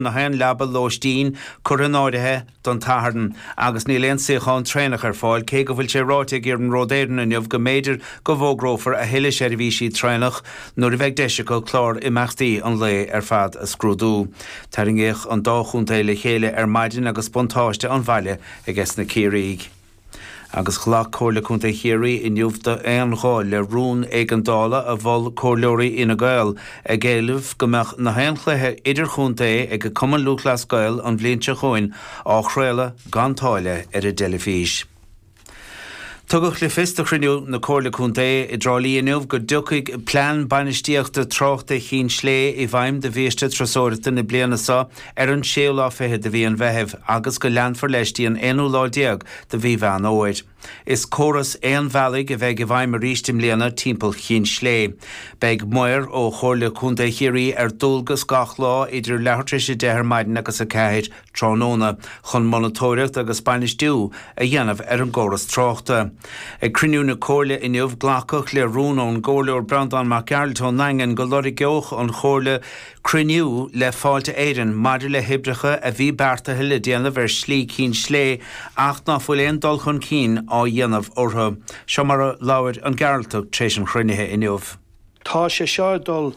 na haon leaba lóistín curtha in áirithe don tSatharn agus níl aon suíochán traenach ar fáil, cé go bhfuil sé ráite ag Iarnród Éireann inniu go mb'fhéidir go bhfógrófar a thuilleadh seirbhísí traenach nuair a bheidh deis acu clár imeachtaí an lae ar fad a scrúdú. Tarraingíodh an dá chontae le chéile ar maidin agus buntáiste an bhaile agesna Ciarraígh. Agus ghlac Comhairle Contae Chiarraí inniu d'aon ghuth le rún éigeandála a mhol Comhairleoirí Fhine Gael, ag éileamh go mbeadh na haon chluiche idirchontae ag Cumann Lúthchleas Gael an bhliain seo chugainn á chraoladh gan táille ar an dteilifís. Tugadh le fios do chruinniú na Comhairle Contae i dTrá Lí inniu go dtiocfaidh plean bainistíochta tráchta Chinn Slé i bhfeidhm do bhiaiste turasóireachta na bliana seo, ar an séú lá fichead de mhí an Mheithimh agus go leanfar leis dtí an aonú lá déag de mhí Mheán Fhómhair. Is córas aon-bhealaigh a bheidh i bhfeidhm arís i mbliana timpeall Chinn Slé. Beidh maor ó Chomhairle Contae Chiarraí ar dualgas gach lá idir leathuair tar éis a deich ar maidin agus a ceathair tráthnóna chun monatóireacht agus bainistiú a dhéanamh ar an gcóras tráchta. Ag cruinniú na Comhairle inniu glacadh le rún ón gComhairleoir Breandán Mac Gearailt ón nDaingean go lorgeodh an Chomhairle Cruinniú le Fáilte Éireann maidir le hoibreacha a bhí beartaithe le déanamh ar Shlí Cinn Slé ach ná fuil aon dul chun cinn á dhéanamh orthu. Seo mar a labhair an Gearaltach tar éis an chruinnithe inniu. Tá sé seo ag dul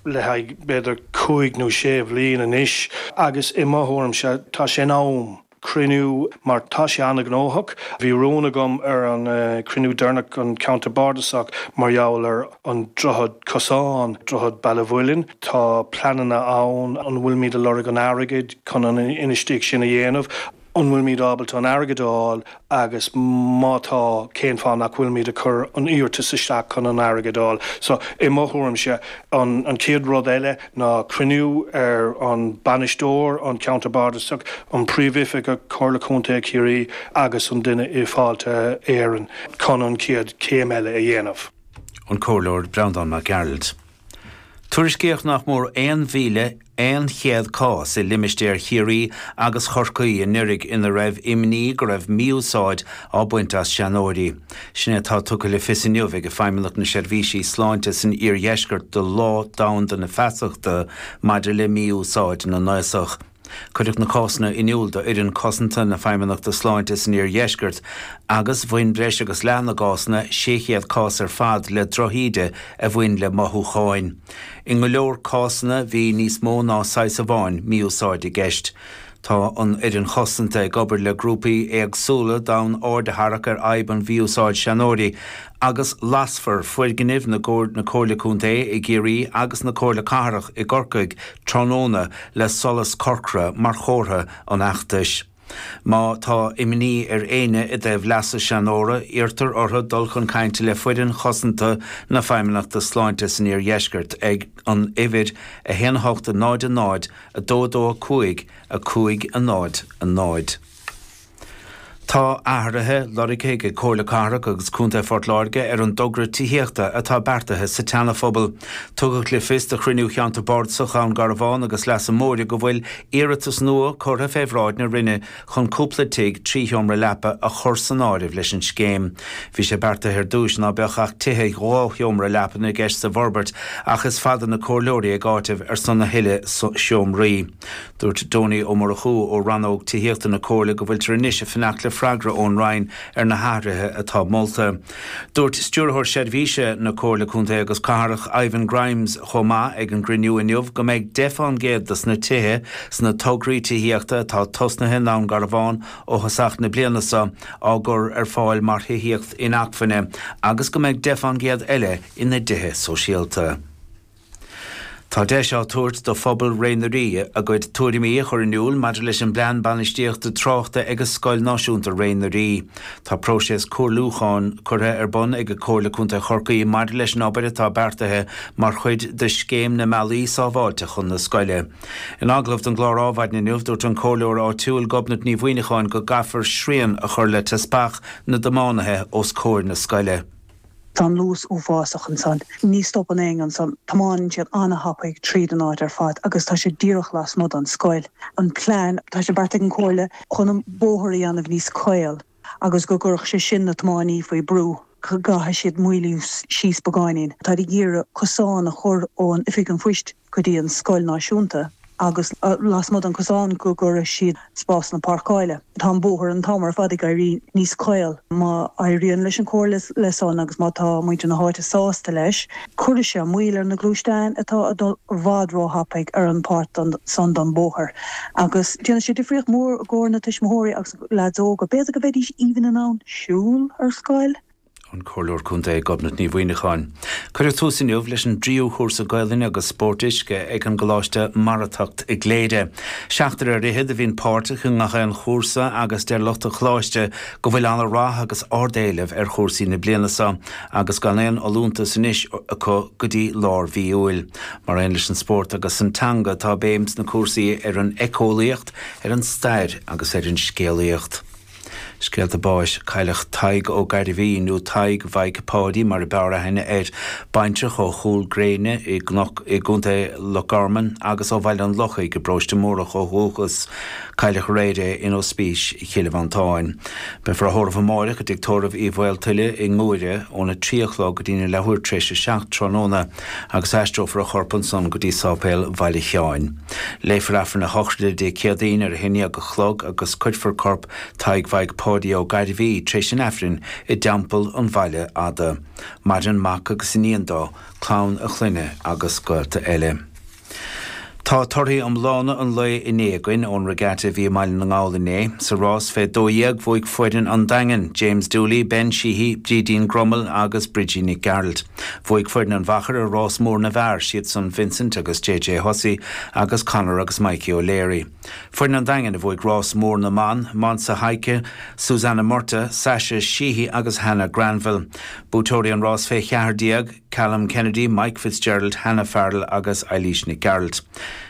le haghaidh b'fhéidir cúig nó sé bhliain anois agus i mo thuairimse tá sé in am, cruinniú mar tá sé an-ghnóthach. Bhí rún agam ar an cruinniú deireanach an ceantar bardasach mar gheall ar an droichead cosáin, droichead Baile an Mhuilinn. Tá pleananna ann. An bhfuilimid ag lorg an airgid chun an infheistíocht sin a dhéanamh? An bhfuilimid ábalta an airgead a fháil agus má tá, cén fáth nach bhfuilimid ag cur an iarratas isteach chun an airgead a fháil? So, i mo thuairimse, an chéad rud eile ná cruinniú ar an Bainisteoir, an Ceantar Bardasach, an Príomhoifigeach, Comhairle Contae Chiarraí agus an duine i Fáilte Éireann chun an chéad chéim eile a dhéanamh. an Comhairleoir Breandán Mac Gearailt. Tuairiscíodh nach mór 1,100 cás i limistéar Chiarraí agus Chorcaí anuraidh ina raibh imní go raibh mí-úsáid á baint as seanóirí. Sin é atá tugtha le fios inniu ag Feidhmeannacht na Seirbhísí Sláinte san Iardheisceart do Lá Domhanda na Feasachta maidir le Mí-Úsáid na nAosach. Cuireadh na cásanna in iúl d'Fhoireann Cosanta na Feidhmeannachta Sláinte san Iardheisceart agus bhain breis agus leath na gcásanna, 600 cás ar fad, le drochíde a bhain le mothúcháin. I ngo leor cásanna bhí níos mó ná saghas amháin mí-úsáid i gceist. Tá an Fhoireann Chosanta ag obair le grúpaí éagsúla d'fhonn aird a tharrac ar fhadhb mhí-úsáid seanóirí, agus lasfar foirgnimh na Comhairle Contae i gCiarraí agus na Comhairle Cathrach i gCorcaigh tráthnóna le solas corcra mar chomhartha ar an bhfeachtas. Má tá imní ar éinne i dtaobh leasa seanóra, iarrtar orthu dul chun cainte le Foireann Chosanta na Feidhmeannachta Sláinte san Iardheisceart ag an uimhir 1 8 0 0 2 2 5 5 0 0 Tá athruithe lorgtha ag Comhairle Cathrach agus Contae Phort Láirge ar an dtogra tithíochta atá beartaithe sa tSeanaphobal. Tugadh le fios do chruinniú Cheantar Bardasach Dhún Garbhán agus Leasa Móire go bhfuil iarratas nua curtha fé bhráid na Roinne chun cúpla tigh trí sheomra leapan a chur san áireamh leis an scéim. Bhí sé beartaithe ar dtúis ná beadh ach tithe dhá sheomra leapan i gceist sa bhforbairt ach is fada na comhairleoirí ag áiteamh ar son a thuilleadh seomraí. Dúirt Donie Ó Murchú ó Rannóg Tithíochta na Comhairle go bhfuiltear anois ag fanacht le freagra ón Roinn ar na hathruithe atá molta. Dúirt Stiúrthóir Seirbhíse na Comhairle Contae agus Cathrach, Ivan Grimes, chomh maith ag an gcruinniú inniu go mbeidh 10 fán gcéad dos na tithe sna tograí tithíochta atá tosnaithe i nDún Garbhán ó thosach na bliana seo á gcur ar fáil mar thithíocht inacmhainne agus go mbeidh 10 fán gcéad eile ina dtithe sóisialta. Tá deis á tabhairt do phobal Réidh na nDoirí a gcuid tuairimí a chur in iúl maidir le plean bainistíochta tráchta ag Scoil Náisiúnta Réidh na nDoirí. Tá próiseas comhairliúcháin curtha ar bun ag Comhairle Contae Chorcaí maidir leis an obair atá beartaithe mar chuid de Scéim na mBealaí Sábháilte chun na Scoile. In agallamh don gclár Ádhmhaidin inniu, dúirt an Comhairleoir áitiúil Gobnait Ní Mhuimhneacháin go gcaithfear srian a chur le teaspach na dtiománaithe os comhair na scoile. Tá an luas uafásach ansan. Ní stopann éinne ansan. Tiomáineann siad an-thapaidh tríd an áit ar fad agus tá sé díreach lasmuigh don scoil. An plean, tá sé beartaithe ag an comhairle chun an bóthar a dhéanamh níos caol agus go gcuirfeadh sé sin na tiomáiní faoi brú. Go gcaithfidh siad moilliú síos beagáinín. Táid ag iarraidh cosán a chur ón oifig an phoist. go dtí an scoil náisiúnta agus lasmuigh den chosán go gcuirfeadh siad spásanna páirceáile. Tá an bóthar an t-am ar fad ag éirí níos caol. Má éiríonn leis an chomhairle leis san agus má tá muintir na háite sásta leis, cuirfidh sé moill ar na gluaisteáin atá ag dul i bhfad róthapaidh ar an pháirt san den bóthar agus déanfaidh sé difríocht mhór i gcomhair na tuismitheoirí agus na leaids óga. B'fhéidir go mbeidís even in ann siúl ar scoil. An Comhairleoir Contae Gobnait Ní Mhaoineacháin. Cuireadh tús inniu leis an dtríú cúrsa Gaolainne agus Spóirt Uisce ag an gColáiste Marathacht i gCléire. Seachtar ar fhichead a bhíonn páirteach i ngach aon chúrsa agus deir lucht an Choláiste go bhfuil ana rath agus ard éileamh ar chúrsaí na bliana seo agus gan aon fholúntas anois acu go dtí lár mhí Iúil. Mar aon leis an spórt agus an teanga tá béim sna cúrsaí ar an eiceolaíocht, ar an stair agus ar an scéalaíocht. Scéalta Báis, Cailleadh Tadhg Ó Gairbhí, nó Tadhg Mhaidhc Pháidí mar a b'fhearr aithne air, baintreach ó Chúl Gréine i gCnoc i gContae Loch Garman agus ó Bhaile an Lochaigh i bParóiste Mórdhach ó dhúchas. Cailleadh aréir é in Ospís Chill Mhantáin. Beifear á thórramh amáireach i dTigh Tórraimh Uí Mhaoltuile i nGuaire ón 3 a chlog go dtí'n leathuair tréis a seacht tráthnóna. agus aistreofar a chorp ansan go dtí sáipéal Bhaile Sheáin. Léifear Aifreann a shochraide Dé Céadaoin ar a haon dhéag a chlog agus cuirfear corp Tadhg Mhaidhc Pháidí Ó Gairbhí tar éis an Aifrinn i dTeampall an Bhaile Fhada. Maireann mac agus iníon dó, clann a chlainne agus gaolta eile. Tá torthaí iomlána an lae inné aguinn ón regatta a bhí i mBaile na nGall inné. Sa rás fé 12, bhuaigh foireann An Daingin, James Dooley, Ben Sheehy, Brídín Grommell agus Brigid Nic Gearailt. Bhuaigh foireann an Mhachaire rás mór na bhfear, siadsan Vincent agus JJ Hussey agus Conor agus Mikey O'Leary. Foireann An Daingin a bhuaigh rás mór na mban, Monse Heidtke, Suzanna Murtagh, Sasha Sheehy agus Hannah Granville. Buaiteoirí an rás fé cheathar déag, Calum Kennedy, Mike Fitzgerald, Hannah Farrell agus Eilís Nic Gearailt.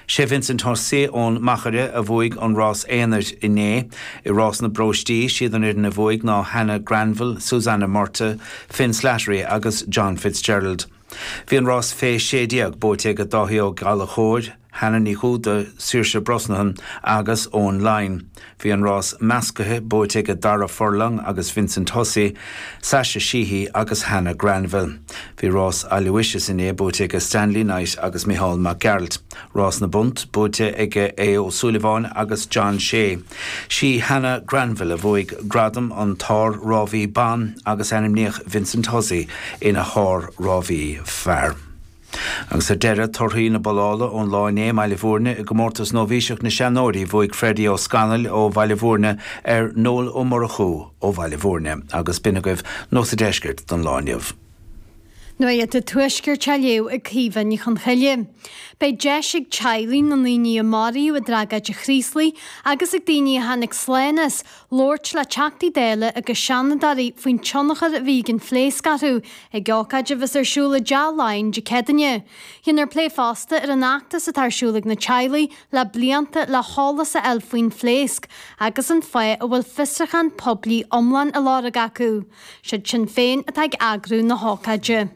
Sé Vincent Hussey ón Machaire a bhuaigh an rás aonair inné. I rás na bpróistí, siad an fhoireann a bhuaigh ná Hannah Granville, Susanna Murtagh, Finn Slattery agus John Fitzgerald. Bhí an rás Fé 16 buaite ag Dáithí Ó Gallchóir, Hannah Ní Dhúda, Saoirse Brosnahan agus Eoin Laighin. Bhí an rás meascaithe buaite aige Darragh Furlong agus Vincent Hussey, Sasha Sheehy agus Hannah Granville. Bhí rás Aloysius inné buaite aige Stanley Knight agus Mícheál Mac Gearailt. Rás na bpunt buaite aige Aodh Ó Súilleabháin agus John Shea. Sí Hannah Granville a bhuaigh gradam an tsár-rámhaí ban agus ainmníodh Vincent Hussey ina shár-rámhaí fear. Agus ar deireadh, torthaí na bollála ón lá inné i mBaile Bhúirne i gcomórtas nóibhíseach na seanóirí, bhuaigh Freddy Ó Scanaill ó Bhaile Bhúirne ar Noel Ó Murchú ó Bhaile Bhúirne agus b'in agaibh nuacht an deiscirt don lá inniu. Nuacht an tuaiscirt á léamh ag Caoimhe Ní Chonchoille. Beidh deis ag teaghlaigh na ndaoine a maraíodh i dtragóid an Chraoslaigh agus ag daoine a tháinig slán as, labhairt le teachtaí dála agus seanadóirí faoin tionchar a bhí ag an phléasc orthu ag ócáid a bheas ar siúl i dTeach Laighean Dé Céadaoine. Dhéanfar plé fosta ar an fheachtas atá ar siúl ag na teaghlaigh le blianta le heolas a fháil faoin phléasc agus an fáth a bhfuil fiosrúchán poiblí iomlán á lorg acu. Siad Sinn Féin atá ag eagrú na hócáide.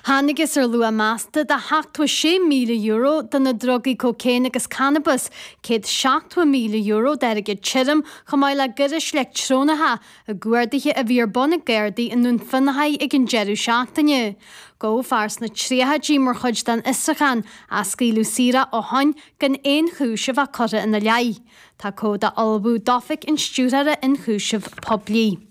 Thángthas ar luach measta de sheachtó sé míle euro de na drugaí cóicéin agus cannabas, céad seachtó míle euro d'airgead tirim, chomh maith le gairis leictreonacha, i gcuardaithe a bhí ar bun ag Gardaí i nDún Fionnachaidh ag an deireadh seachtaine. Gabhadh fear sna tríochaidí mar chuid den fhiosrúchán ach scaoileadh saor é ó shin gan aon chúis a bheith curtha ina leith. Tá comhad á ullmhú d'Oifig an Stiúrthóra Ionchúiseamh Poiblí.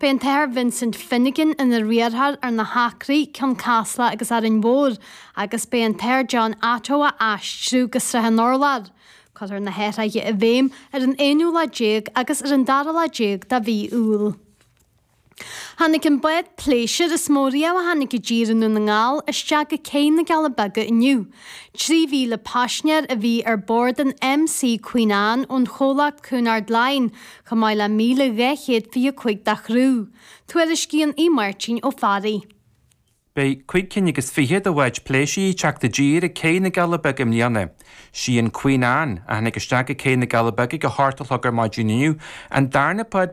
Beidh an tAthair Vincent Finnegan ina riarthóir ar na hAcraí, Cionn Caslach agus Árainn Mhór, agus beidh an tAthair John Attoh á aistriú go Srath an Urláir. Cuirfear na hathruithe i bhfeidhm ar an aonú lá déag agus ar an dara lá déag de mhí Iúil. Tháinig an bád pléisiúir is mó riamh a tháinig i dtír i nDún na nGall isteach go cé na gCealla Beaga inniu. Trí mhíle paisnéir a bhí ar bord an MC Queen Anne ón chomhlacht Cunard Line, chomh maith le míle dhá chéad fiche cúig de chriú, tuairiscíonn Aodh Máirtín Ó Fearraigh. Beidh cúig cinn agus fiche de bháid pléisiúir ag teacht i dtír ag céidh na gCealla Beaga i mbliana. Sí an Queen Anne, a tháinig isteach ag céidh na gCealla Beaga go hiontach luath ar maidin inniu, an darna bád